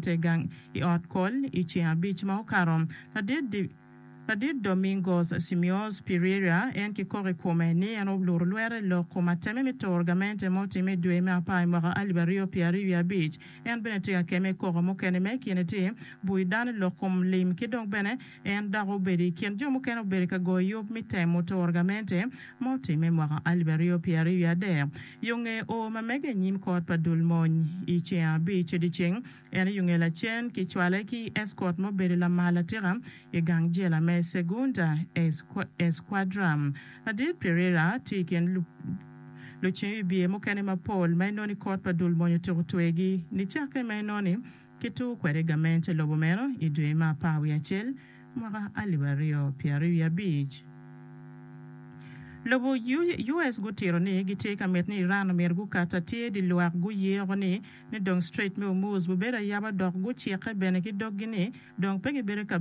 te gang i ot kol i ceng abic ma okato. Ladit Domingos Simeos Pereira, en kikok i kome ni en oluro lwere lok kom ateme me toro gamente ma otimme i dwe me apar i mwaka alip aryo pye aryo wiye abic. En bene tye ka keme i koko mukene ma i kine tye, bui dano lok kom lim ki dok bene, En dok obedo i kin jo mukene obedo i ka goyo yub me temo turo gamente ma otimme i mwaka alip aryo pyera aryo wiye adek. Yo nge o ma mege i nyim kot pa dul mony i ceng abic dyeceng en i yo nge lacen ki cwale ki eskot ma obedo lamal atika i gang jela me Segunda Escuadra. Ladit Pereira tye i kin lucing wibye mukene mapol ma enoni kot pa dul mony otyeko twegi nicakke ma enoni. Kituko kwede gamente lobo meno i dwe me apar wiye acel mwaka alip aryo pye aryo wiye abic. Lobo US gutito ni gitye ka mit ni Iran omyero gukat atir di lwak guye oko ni ni dong Strait me Hormuz bubedo ayaba dok gucikke bene ki doggi ni dong pe gibedo ka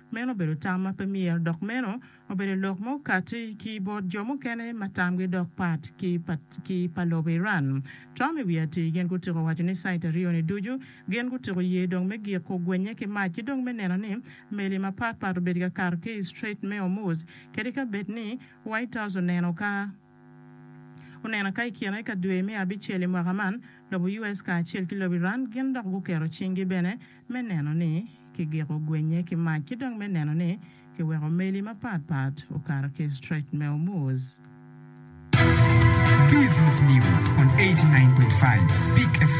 Meno obedo tam ma pe myero, dok meno obedo lok ma okatti ki bot jo mukene ma tamgi dok pat ki pa ki pa lobo Iran. Trump i wi atir gin gutyeko waco ni cite aryo-ni ducu gin gutyeko ye dong me gik kugwenye ki mac ki dong me neno ni meli mapatpat obedo ka kato ki i Strait me Hormuz kadi ka bed ni White House oneno ka Onena ka i kine ka dwe me abicel i mwaka man, lobo US kacel ki lobo Iran gin dok guketo cinggi bene me neno ni kigiko gwenye ki mac ki dong me neno ni kiweko meli mapatpat okato ki i Strait me Hormuz. Business News on 89.5 Speak FM.